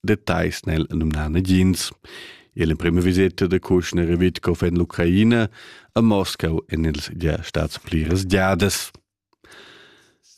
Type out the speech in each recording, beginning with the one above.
Details nel numna negins. L'emprima viseta de Kushner e Witkov en l'Ucraina a Moscau en ils gia stats pliras giadas.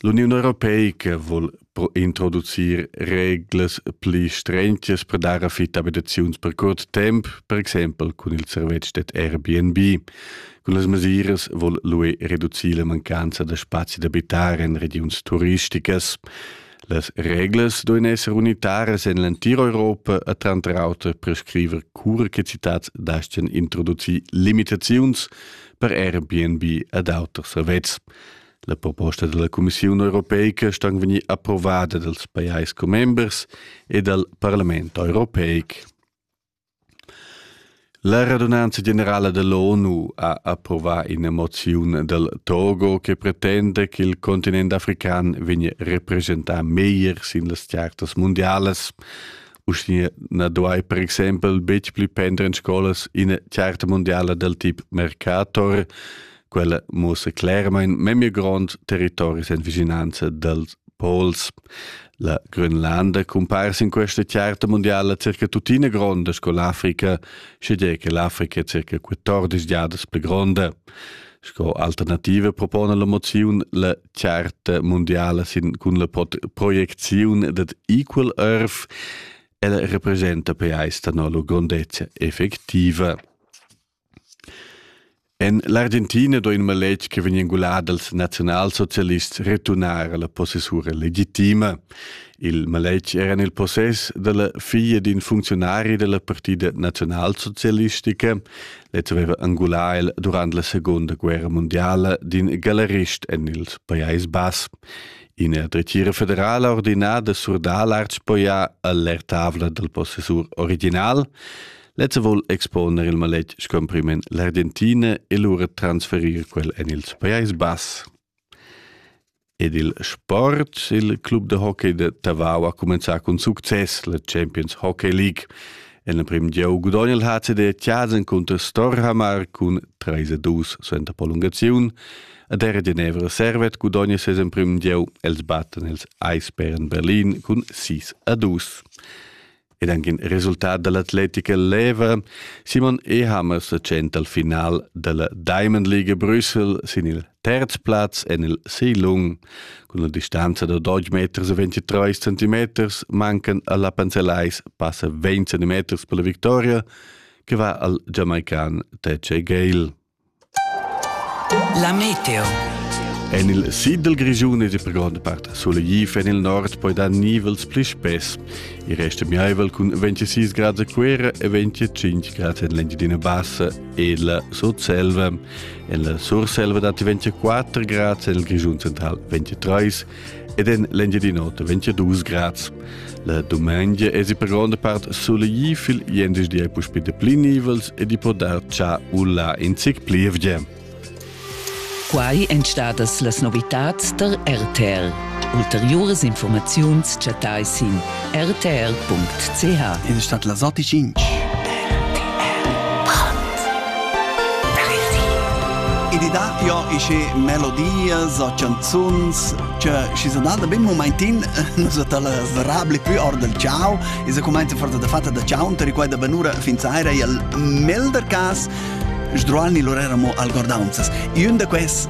L'Union Europeica vuol introducir reglas pli strentas per dar affittabilisaziuns per curt temp, per exempel cun il servetsch det Airbnb. Con las mesiras vuol l'UE reducir la mancanza da spazi d'abitar en regions turisticas. Las reglas duein esser unitaras en l'entira Europa e tranter auter prescriver cura che citats dastgan introducir limitaziuns per Airbnb ed auters servetschs. La proposta della Commissiun europeica sta vegnir approvada dals pajais commembers e dal Parlament europeic. La radunanza generala dall'ONU ha approvà ina moziun dal Togo che pretenda ch'il continent african vegnia representà meglier sin las chartas mundialas. Uschia na duai per exempel betg pli pender en scolas ina charta mundiala dal tip Mercator. Quella muossa clermain memia grond territoris en vicinanza dals Pols. La Grönlanda cumpare in questa charta mondiala circa tuttina gronda sco l'Africa, sche che l'Africa è circa 14 giadas pli gronda. Sco alternativa propone la moziun la charta mondiala sin cun la proieziun dad Equal Earth. Ella representa per eis no la grondezza effettiva. En l'Argentina sto in maletg che vegn engulà dals naziunalsocialists returnar alla possessura legitima. Il maletg era en il possess dalla figlia d'in funzionari della partida naziunalsocialistica. Lez aveva angulà el durant la seconda guerra mondiala d'in galerist en il Pajais Bass. Ina dretgira federala ordinada surdà l'archpoia all'ertavla dal possessur original. Lezza vol exponer il maletg scomprimen l'Argentina e lura transferir quel en il Pajais Bass. Ed il sport, il club de hockey de Tavau ha comenzà con success la Champions Hockey League. En la prim gieu gudogna il HCD Tjasen contro Storhamar cun 3-2 suenter prolungaziun. Ad era Genevra Servet gudogna ses en prim gieu els batten els Eisbären Berlin cun 6-2. ed anche in resultat dell'atletica leva, Simon Ehammer se tschenta al final della Diamond League Brüssel sin il terz Platz en il Seilung. Con la distanza da 12 meters e 23 centimeters mancan alla Panzelais passa 20 centimeters per la victoria, che va al jamaican Tece Gale. La meteo. En il sid dal Grischun è per gronda part solegliv, en il nord poi dar nivels pli spess. Il rest è miaivel cun 26 gradi a Cuera e 25 gradi en l'Engiadina Bassa e la Sotselva. En la Surselva datti 24 gradi, en il Grischun central 23, ed en l'Engiadin'Ota 22 grads. La dumengia es i per gronda part soleglì fil di e puspi de pli nivels ed i può dar cha u là in zic plievgia. Quai èn stadas las novitads tar RTL. Ulteriuras informaziuns chattai sin rtr.ch In stat las otg inch. Ed i dat jo isce melodias o canzuns che si sono date ben momentin nus ta las rabli più or del ciao e se comenza forza da fatta da ciao unter quella benura fin saira e al melder cas sdrualni loreramo al gordaunzas. E un da quest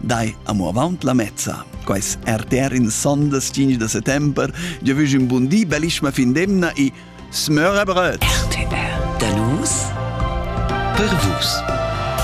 Dai amo avaunt la mezza. Quais RTR in sondas 5 da settember, io vüg un bun di, bellissima fin d'emna e smöra bröt! RTR, da nus per vus.